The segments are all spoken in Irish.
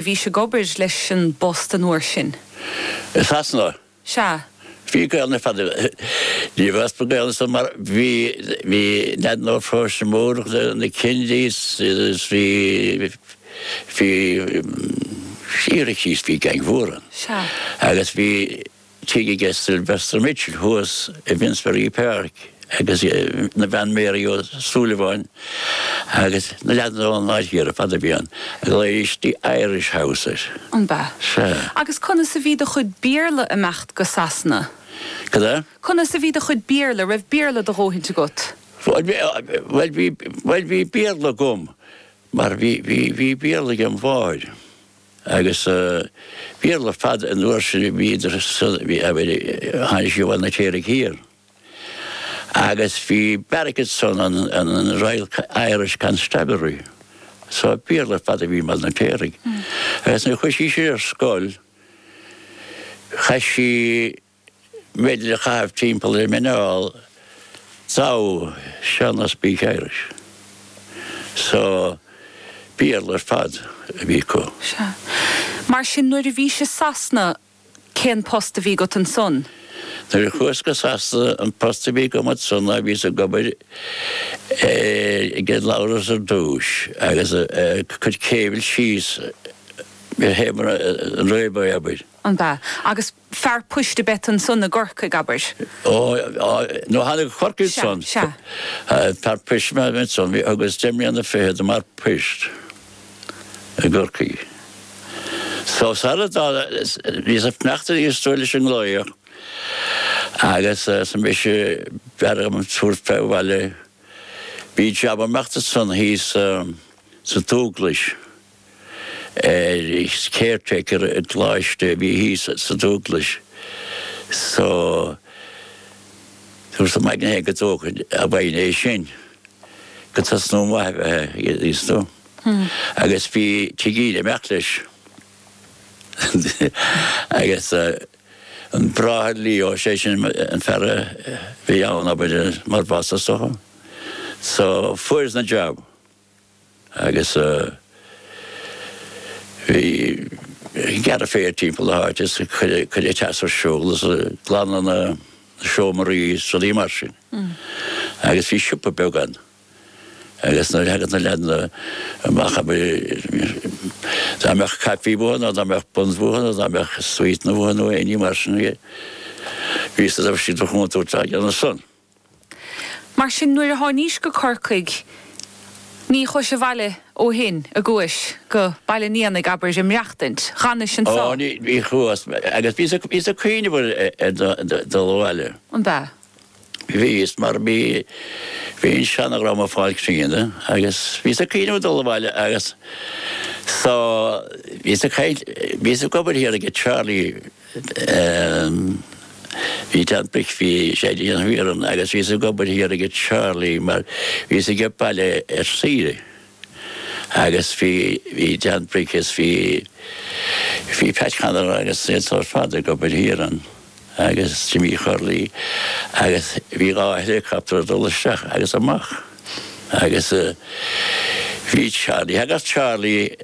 Bhí sé ag obair leis an bpost an uair sin. I Sasana. Sea. Bhí Gaelainn ar fad díobh as ba Gaelainn san mar bhí bhí nead nó próis mór na Kennedys is bhí bhí sí ar a cíos bhí geaing mhór ann. Sea. Agus bhí. tigh aige Sylvester Mitchell thuas i bhFinsbury Park agus a bhean Mary Ó Súilleabháin agus na leaideanna ón áit thiar ar fad a bhí ann. Ghlaoigh siad Irish House air. An b'ea? Sea. Agus conas a bhí do chuid Béarla ag imeacht go Sasana? Cad é? Conas a bhí do chuid Béarla, raibh Béarla do dhóthaint agat? Bhuel, bhí, bhuel, bhí, bhuel, bhí Béarla agam mar bhí, bhí, bhí Béarla agem mháthair. Agus Béarla ar fad an uair sin, bhíodar sa, tháinig sí ó Bhaile an Fheirtéaraigh Thiar. Agus bhí barracks san an Royal Irish Constabulary. So Béarla ar fad a bhí i mBaile an Fheirtéaraigh. Agus nuair a chuaigh sí sin ar scoil, chaith sí, b'fhéidir a chaitheamh timpeall ar a muineál thou shalt not speak Irish so Béarla ar fad a bhí acu. Sea. Mar sin nuair a bhís i Sasana cén post a bhí agat ansan? Nuair a chuas go Sasana an post a bhí agam ansan ná bhíos ag obair ag an Labhras ar dtúis agus ag cur cable síos théis mar an railway abair. An b'ea? Agus fear poist ab ea ansan i gCorcaigh, abair. Ó, á, nuair a thánag go Corcaigh ansan. Sea, sea. Fear poist ab ea ansan, thugas deich mbliana fichead i m'fhear poist i gCorcaigh. So, sarar fhágas, bhíos ag fanacht ar aon stór leis an nglaoch agus arsa mise b'fhearr dhom tabhairt fé abhaile. Bhí jab ag imeacht ansan thíos sa Dúglais. ar caretaker i gColáiste a bhí thíos sa Dúglais. So, dúrtsa im aigne féin go dtógfainn a mhaoin é sin go tosnú an mhaith a bheith aige thíos tú. Agus bhí tigh ag imeacht leis. Agus an bráthair Leo, sé sin an fear a bhí ann abair mar boss, is dócha. So, fuaireas an jab. agus bheith ag gearradh féir timpeall na háite is ag cur an teas ar siúl is ag glanadh na seomraí is rudaí mar sin. Agus bhí siopa beag ann agus nuair a thagadh na leaideanna amach dá mbeadh caifí uathu nó dá mbeadh buns uathu nó dá mbeadh sweeteanna uathu nó éinní mar sin, bhínnse ag an gcuntúirt a dhéanamh san. Mar sin, nuair a tháinís go Corcaigh, ní chuais abhaile ó shin, a gcuais, go Baile an Éanaigh, abair, ag maireachtaint, dh'fhanais anso. Ó, ní chuas, agus bhíos a' cuíneamh ar dhul abhaile. An b'ea? Bhíos, mar bhí, bhí an seanadhream a' fáil críona, agus bhíos a' cuíneamh a dhul abhaile agus so, bhíos a' caint, bhíos ag obair thiar aige Charlie, Em, bhí Dan Bric, bhí sé ag déanamh iarann agus bhíos ag obair thiar aige Charlie mar bhíos aige baile ar saoire. Agus bhí, bhí Dan Bric is bhí, bhí Pat Connor agus iad san ar fad ag obair thiar ann agus Jimmy Chorley agus bhí dhá helicopter ag dul isteach agus amach. Agus eh, bhí Charlie, thagadh Charlie,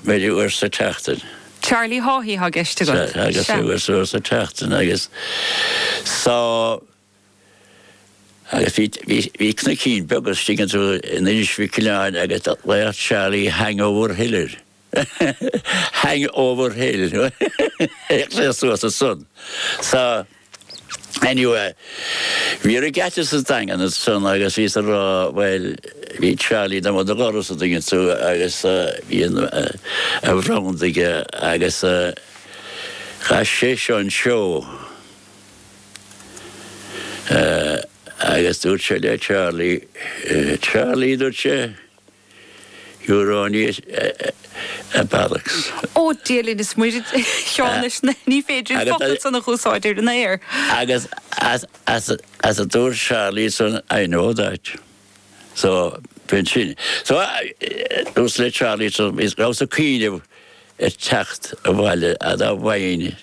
maybe uair sa tseachtain. Charlie Haughey thá gceist agat. Agus a bhfuil uair sa tseachtain agus so agus bhí bhí bhí cnoicín beag an dtuigeann tú in Inis Mhic Aoibhleáin agus do ghlaodh Charlie Hangover Hill air, Hangover Hill. Théadh sé suas as san so. Anyway, bhí regatta sa Daingean ansan agus bhíos a rá, bhuel, bhí Charlie dom an doras a dtuigeann tú agus bhí an a bhrand aige agus chaith seisean an seó agus dúirt sé le Charlie, Charlie, dúirt sé, You're only a bollocks. Ó, Dia linn, is Muire Seán leis na, ní féidir an focal san a úsáid ar an aer. Agus as a dúirt Charlie san, I know that. So, b'in sin. So, dúirt Charlie, so, bhíos, rabhas ag cuimhneamh ar teacht abhaile, fhad a' mhaoin.